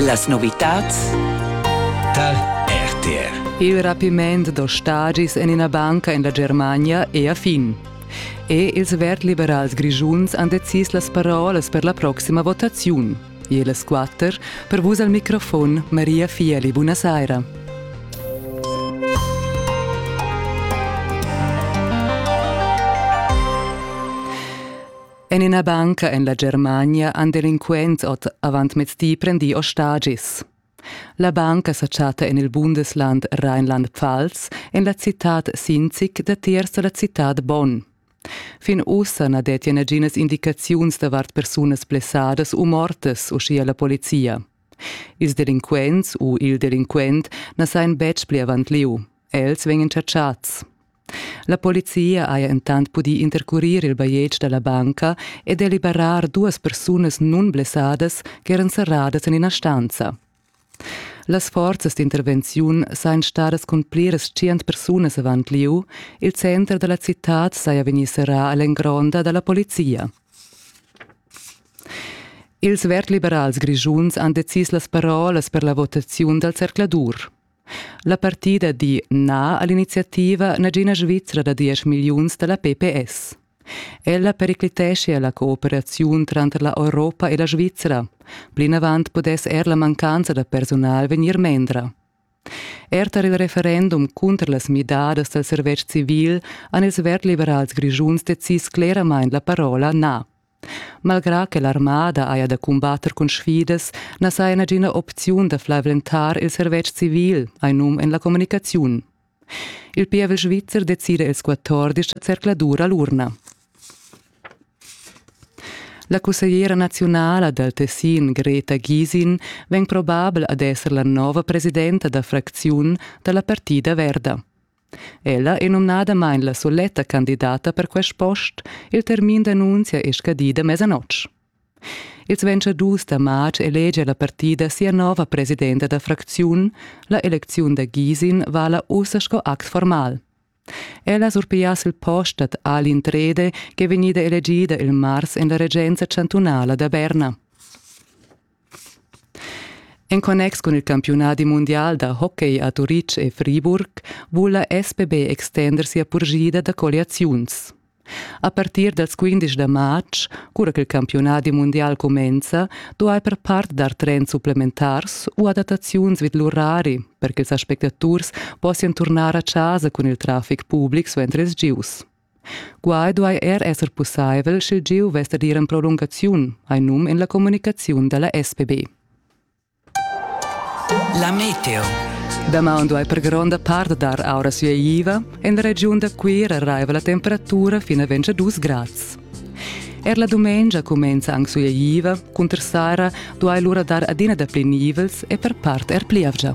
Las novitads tar RTR. Il rapiment da stagis en ina banca en la Germania è a fin. E ils verd-liberals grischuns han decis las parolas per la proxima votaziun. E las quatter per vus al microfon Maria Fieli. Buonasera. En ina banca en la Germania han delinquents ot avantmezdi prendì ostagis. La banca sa chatta en il Bundesland Rheinland-Pfalz, en la citad Sinzig, datiers da la citad Bonn. Fin ussa na dettia naginas indicaziuns davart persunas blessadas u mortas, uschia la polizia. Ils delinquents u il delinquent na sajan betg pli avant lieu. Els vegnan chatschads. La polizia haja entant pudì intercurir il bajetg da la banca e deliberar duas persunas nunblessadas ch'eran serradas en ina stanza. Las forzas d'intervenziun sajan stadas cun pliras tschient persunas avant lieu. Il center da la citad saja vegnì serrà a l'engronda da la polizia. Ils verd-liberals grischuns han decis las parolas per la votaziun dal zercladur. La partida di na a l'iniziativa nagina Svizra da diesch milliuns da la PPS. Ella pericliteschia la cooperaziun tranter la Europa e la Svizra. Plinavant pudess er la mancanza da persunal vegnir mendra. Er tar il referendum cunter las midadas dal servetsch civil han ils verd-liberals grischuns decis cleramain la parola na. Malgrà che l'armada haja da cumbatter cun sfidas, na saja nagina opziun da flaventar il servetsch civil, hai num en la communicaziun. Il pievel svizzer decida ils 14 zercladura l'urna. La cussegliera naziunala dal Tessin Greta Gisin vegn probabel ad esser la nova presidenta da fracziun da la partida verda. Ella è numnadamain la suletta candidata per quest post. Il termin d'annunzia è scadida mesanotg. Ils ventgadus da matg elegia la partida sia nova presidenta da fracziun. La elecziun da Gisin vala ussa sco act formal. Ella surpigliass il post dad Alin Trede, ch'è vegnida elegida il mars en la regenza chantunala da Berna. En connex cun il campiunadi mundial da hockey a Turitg e Friburg vul la SPB extender sia purschida da colliaziuns. A partir dals 15 da marz, cura ch'il campiunadi mundial cumenza, duai per part dar trends supplementars u adattaziuns vid l'urari per ch'ils aspectaturs possian turnar a chasa cun il traffic public suenter ils gius. Quai duai er esser pussaivel, sch'il gieu vess dad ir en prolungaziun, hai num en la communicaziun da la SPB. La meteo. Damaun duai per gronda part dar aura sueiva. En la regiun da Cuira raiva la temperatura fin a 22 grads. Er la dumengia cumenza anc sueiva, cunter saira duai lura dar adina dapli nivels e per part er plievgia.